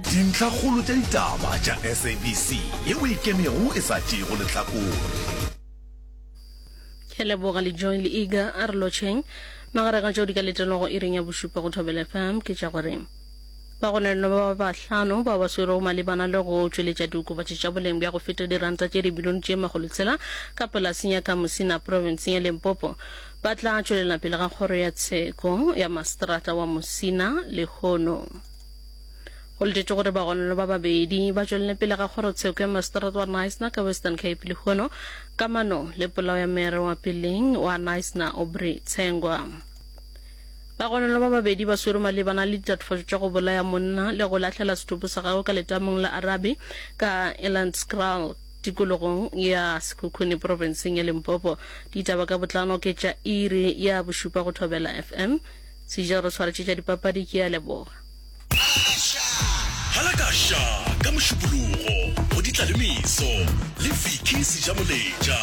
Dintlhakgolo tša ditaba tša SABC yeo e ikemego e sa tšeego lehlakore. Ke a leboga le Joy le Iga. A re lotšheng. Magareng a tšeo di ka letelwago iring ya bošupa go Thobela FM ke tša gore bagononelwa ba bahlano bao ba swerwego malebana le go tšweletša diokobatši tša boleng bja go feta diranta tše dibilione tše makgolo tshela ka polaseng ya Kamusina profenseng ya Limpopo ba tla tšwelela pele ga kgoro ya tsheko ya maseterata wa Musina lehono. Go letetšwe gore bagononwa ba babedi ba tšwelele pele ga kgorotsheko ya maseterata wa Knysna ka Western Cape lehono kamano le polao ya mere wa peleng wa Knysna Aubrey Tshengwa. Bagononwa ba babedi ba swerwe malebana le ditlatofatšo tša go bolaya monna le go lahlela sethopo sa gagwe ka letamong la Arabe ka Elandskraal tikologong ya Sekhukhune profenseng ya Limpopo. Ditaba ka botlalo ke tša iri ya bošupa go Thobela FM. Sejelo re tshwaretše tša dipapadi ke a leboga. Halakasha ka Mošupologo go di tla le meso le Vicky Sejamoletša.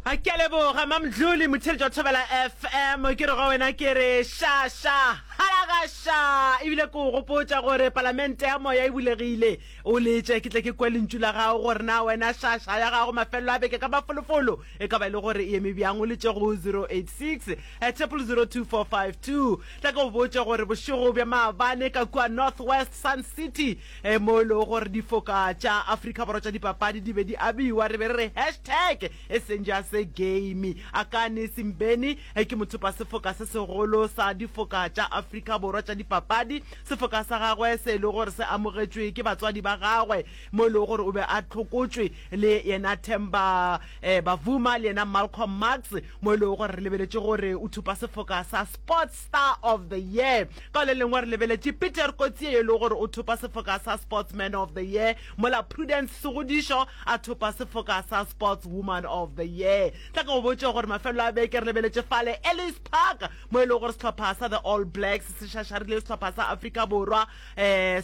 Ke a leboga Mamdluli motheletši wa Thobela FM. Ke re go wena ke re sha sha halaga sha ebile ke o gopotša gore palamente ya moya e bulegile o letše ke tle ke kwe lentšu la gago gore na wena sha sha ya gago mafelelo a beke ka mafolofolo e ka ba e le gore e eme bjang o letše go 086 a triple zero two four five two tla ka o botša gore bošego bja maabane ka kua north west sun city e mo e lego gore difoka tša afrika borwa tša dipapadi di be di abiwa re be re re hashtag e seng ja se game a kane simbeni e ke mothopa sefoka se segolo sa difoka tša afrika borwa tša dipapadi sefoka sa gagwe se e le gore se amogetšwe ke batswadi ba gagwe mo e lego gore o be a tlhokotšwe le yena Themba um Bavuma le yena Malcolm Marx, mo e lego gore re lebeletše gore o thupa sefoka sa Sports Star of the Year. Ka le lengwe re lebeletše Peter Coetzee yo e lego gore o thupa sefoka sa Sportsman of the Year, mola Prudence Segodišo a thupa sefoka sa Sportswoman of the Year. Tla ke go botše gore mafelelo a beke re lebeletše fale Ellis Park mo e lego gore sehlopha sa The All Blacks se šašarile sehlopha sa Afrika Borwa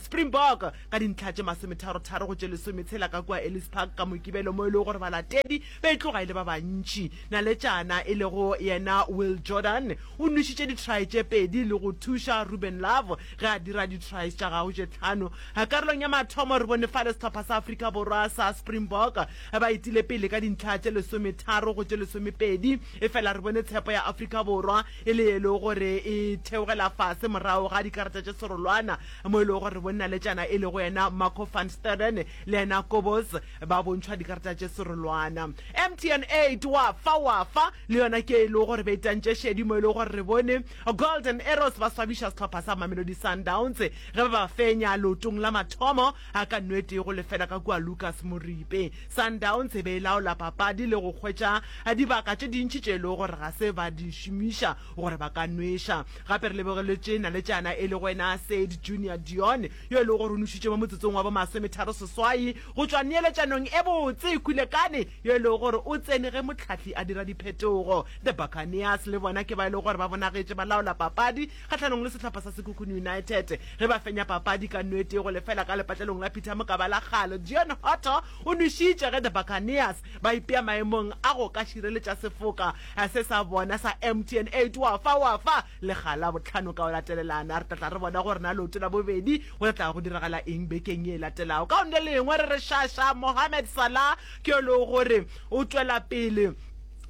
Springbok ka dintlha tše masometharo-tharo go tše lesome tshela ka kua Ellis Park ka Mokibelo mo e lego gore balatedi ba e tloga e le ba bantši. Naletšana e lego yena Will Jordan o nwešitše di-try tše pedi le go thuša Ruben Love ge a dira di-tries tša gagwe tše tlhano. Karolong ya mathomo re bone fale sehlopha sa Afrika Borwa sa Springbok ba etile pele ka dintlha tše lesometharo go tše lesomepedi efela re bone tshepo ya Afrika Borwa e le ye e lego gore e theogela fase morago ga dikarata tše serolwana mo e lego gore bonnaletšana e lego yena Marco van Staden le yena Kobos ba bontšhwa dikarata tše serolwana. Mtn eight wa fa wa fa le yona ke e lego gore be tantše šedi mo e lego gore re bone Golden Arrows ba swabiša sehlopha sa Mamelodi Sundowns ge ba ba fenya leotong la mathomo. A ka nwetee go lefela ka kua Lukas Moripe. Sundowns e be e laola papadi le go hwetša dibaka tše dintši tše e lego gore ga se ba di šomiša gore ba ka nweša. Gape re lebogeletše naletšana e lego ena Said Junior Dion yo e lego gore o nwešitše mo motsotsong wa bo masometharo seswai go tšwa neeletšanong e botse. Kulekane yo e lego gore o tsene ge mohlahli a dira diphetogo. The Buccaneers le bona ke ba e lego gore ba bonagetše ba laola papadi kgahlanong le sehlopha sa Sekhukhune United ge ba fenya papadi ka no e tee go lefela ka lepatlelong la Peter Mokaba la Kgalo. Deon Hotto o nwešitše ge the Buccaneers ba ipea maemong a go ka šireletša sefoka se sa bona sa MTN eight wa fa wa fa le ga la bohlano ka go latelelana. Re tla tla re bona gore na leoto la bobedi go tla tla go diragala eng bekeng ye e latelago. Ka gona le lengwe re re Shasha Mohamed Salah ke yo le gore o tšwela pele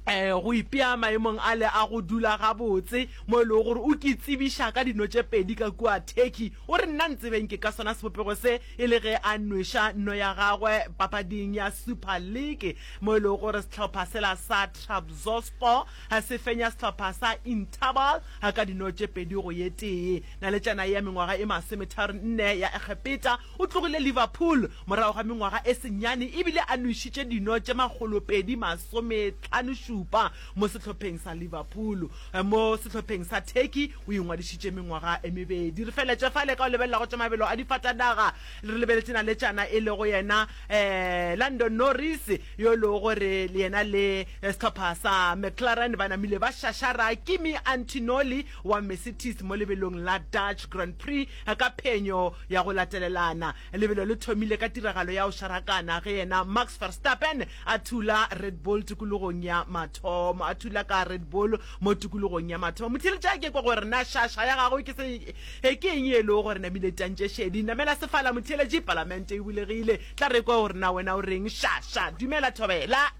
um go ipea maemong ale a go dula gabotse mo e lego gore o ke tsebiša ka dino tše pedi ka kua Turkey. O re, Nna ntsebeng ke ka sona sebopego se e le ge a nweša no ya gagwe papading ya Super League mo e lego gore sehlopha sela sa Trabzonspor se fenya sehlopha sa Interbal ka dino tše pedi go ye tee. Naletšana ye ya mengwaga e masometharo-nne ya Egepeta O tlogile Liverpool morago ga mengwaga e senyane e bile a nwešitše dino tše makgolopedi masometlhanošupa mo sehlopheng sa Liverpool. Mo sehlopheng sa Turkey o ingwadišitše mengwaga e mebedi. Re feletše fale ka go lebelela go tša mabelo a difatanaga. Re lebeletše naletšana e lego yena Lando Norris yo e lego gore yena le sehlopha sa McLaren ba namile ba šašara. Kimi Antinoli wa Mercedes mo lebelong la Dutch Grand Prix ka phenyo ya go latelelana. Lebelo le thomile ka tiragalo ya go šarakana ge yena Max Verstappen a thula Red Bull tikologong ya mathomo. A thula ka Red Bull mo tikologong ya mathomo. Motheeletša ke kwa gore na šaša ya gagwe ke se ke eng ye le gore namile tantše šedi. Namela sefala motheeletši, palamente e bulegile. Tla re kwa gore na wena o reng. Šaša, dumela thobela.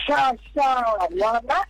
Šaša, ngwana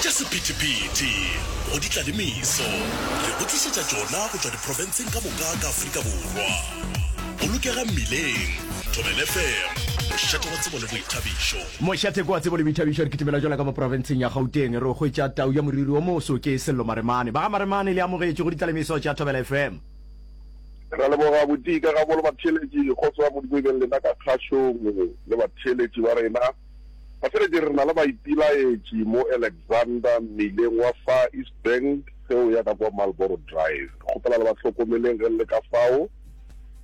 Tša sephethephethe go di tla le meso re go tlišetša tšona go tšwa diprofenseng ka moka ka Afrika Borwa. Bolokega mmileng, Thobela FM, mošate wa tsebo le boithabišo. Mošate wa tsebo le boithabišo, re kitimela jola ka mo profenseng ya Gauteng re o hwetša tau ya moriri o moso ke Sello Maremane. Ba ga Maremane le amogetše go di tla le meso tša Thobela FM. Re a leboga bodika gabo le batheeletši, kgotso ya Modimo e beng lena ka kgašong le batheeletši ba rena. Ba feletše re na le baipilaetši mo Alexander mmileng wa Far East Bank ge o ya ka kwa Marlboro Drive. Re kgopela le ba hlokomeleng ge le le ka fao.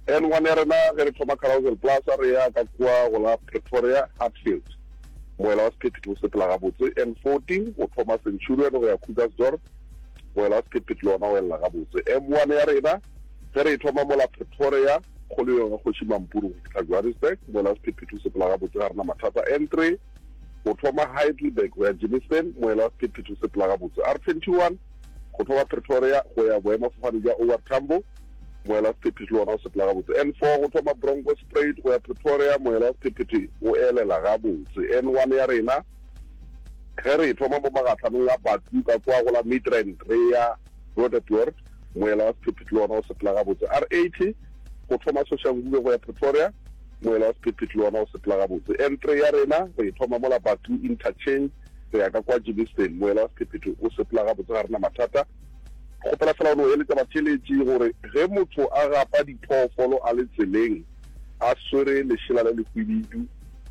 Ann wa nerena ge re thoma Carousel Plaza re ya ka kwa go la Pretoria Hatfield. Moela wa sephethephethe o sepela gabotse N 14 o thoma Centurion go ya Krugersdorp. Moela wa sephethephethe le wona o elela gabotse M1 ya rena ge re e thoma mola Pretoria. Kgolo ya Kgoši Mampuru go fihla Johannesburg, moela sephephethu sepela gabotse ga rena mathata. N3 go thoma Heidelberg go ya Germiston, moela sephephethu sepela gabotse. R21 go thoma Pretoria go ya boemafofane bja OR Tambo, moela sephephethu le ona o sepela gabotse. N4 go thoma Bronkhorstspruit go ya Pretoria, moela sephephethu o elela gabotse. N1 ya rena ge re e thoma mo magatlhanong a Batu ka kwa go la Midrand re ya Roodepoort, moela wa sephephi le wona o sepela gabotse. R80, go thoma Soshanguve go ya Pretoria, moela wa sephephi le wona o sepela gabotse. N3 ya rena re e thoma mola Batu Interchange re ya ka kwa Germiston, moela wa sephephetho o sepela gabotse, ga rena mathata. Kgopela fela o no eletša batheeletši gore ge motho a gapa diphoofolo a le tseleng a swere lešela le lehwibidu,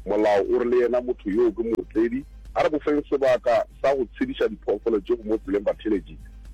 molao o re le yena motho yoo ke mootledi. A re bofeng sebaka sa go tshediša diphoofolo tše go mo tseleng, batheeletši.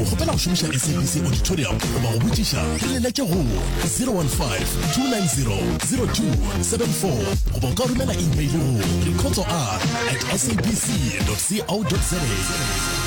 O kgopela go šomiša SABC Auditorium goba go botšiša? Re le letše go 015-290-0274 goba o ka romela imeile go reportsoa at sabc.co.za.